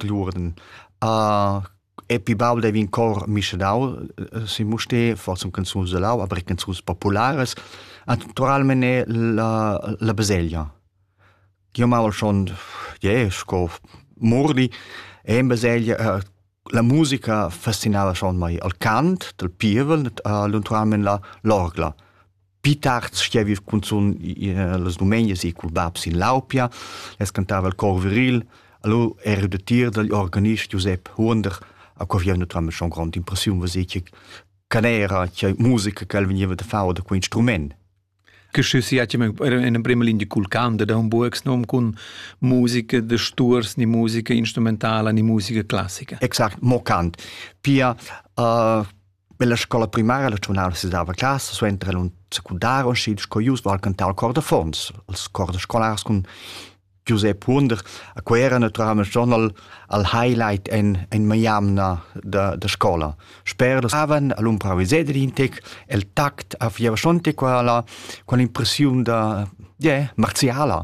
l'urden. Uh, e pi baul devi in cor mischedau eh, si Muste, forse un canzuns de lau, aber canzuns populares. Naturalmente la, la baselgia. Io mal schon, yeah, sco murdi, e in baselgia uh, la musica fascinava schon mai al cant del pievel, uh, luntualmente la l'orgla. pi tard stievi cunzun las dumenias e cul bab sin Laupia, es cantava il cor viril, allora ero de tir dagl organist Giuseppe Huonder, a cui aveva naturalmente schon grande impressione, was ich canera, che musica che el veniva da fare da quel instrument. Che schü si hat in prima linea cul canto da un buoxnom con musica de sturs, ni musica instrumentala, ni musica classica. Exakt, mo cant. Pia uh, Bella scola primaria la giornala si dava classe suenter el un secundar und schied sco jus war cantar al cor de Fons, als cor de scolars cun Giuseppe Wunder, a quei era naturalmente schon al, al highlight en, en maiamna da, da scola. Sper davan al umpra Visedrintic, el tact a fieva schon qua la, con l'impressiun da, yeah, marziala.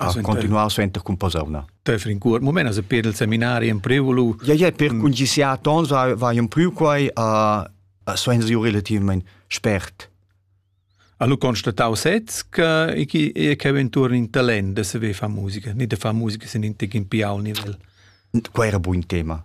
a continuar suenter cun posauna. Te fin cuort moment as per il seminari in prevolu. Ja ja per mm. cungisiar tons vai un pru quai a a suenzi relativament spert. Hanno constatato sez che e che intorno in talent se ve fa musica, ni de fa musica sin in tic in piau nivel. Qua era buon tema.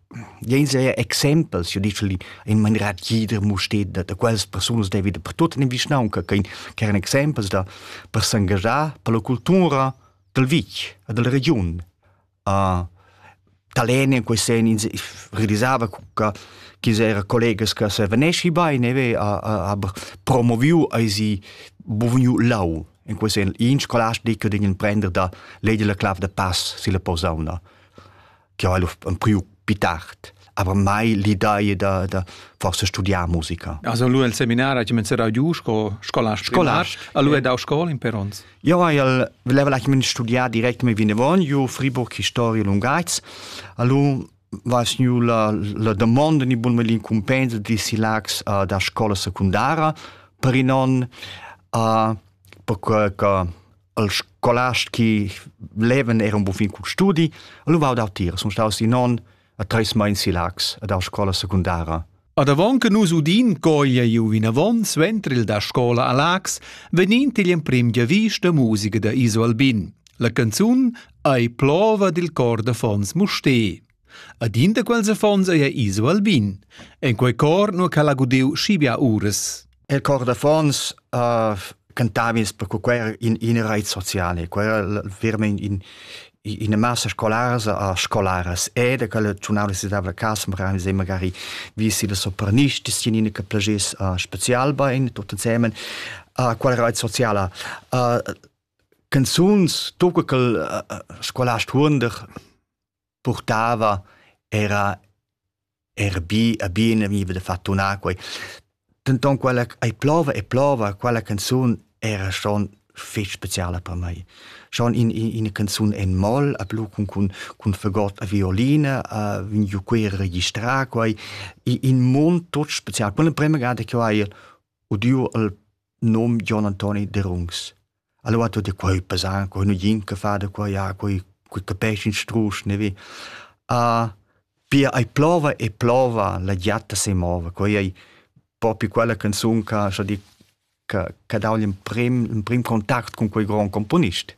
Jens è exempels, io dice in maniera tgida musteda da quels persunas devi da per tut in vischnaunca che eran exempels da per s'engagiar per la cultura dal vitg e della regiun. Uh, Talene in quei sen realisava che chi era collegas che se venesci bene ve a, a, a promoviu ai si bovniu lau in quei sen in scolast di che din prender da lei della clav da pass si la posauna che ha priu più tard aber mai l'idea da, da forse studiar musica. Also lui al seminar ha comenzato giù sco scolast scolast. Allora è da scuola in Perons. Io al voleva la studiare direct mi vinevon io Friburg Historia Lungaits. Allora was nu la, la domanda ni bun melin compensa di silax uh, da scola secundara per non uh, per que che al scolast che levan era un buon fin cul studi, allora vau dau tira, sun staus in on a treis meins si Lax a dau scola secundara. Ad avon che nus udin coglia iu vinavon suenter il da scola a Lax, vegnin igl emprim giavis da musica da Iso Albin. La canzun ei plova dil cor da Fons Musté. Ad in da quels affons ei iso Albin. En quei cor nu ch'el ha gudiu schi bia uras. Il cor d'affons uh, cantava ins perché quei era in, in reit sociale, quei era veramente in, in massa scolaras a scolaras ed quella giornale si dava casa magari se magari visi la sopranisti sinine che plagis uh, special bein tutti insieme uh, qual reit sociala uh, canzuns tu che uh, scolast hunder purtava era era bi e bien e vegniva da far tunar quei. Denton quella ei plova e plova, quella canzun era schon fetg speciala per mei. Schon in, in, ina canzun en moll, a blu cun, cun, cun fagot a violine, a vegn giu quei registrar quei, in mund tot special. Quella prima gada che ho hai udiu il nom John Antoni de Rungs. Allora tutti quei pesan, quei nu gin che fa da qua, ja, quei, quei capesci in strusch, ne vi. Uh, pia ai plova e plova, la giatta se mova, quei ei propi quella canzun che, so di, che, che dà l'emprim, l'emprim contact con quei grand componist.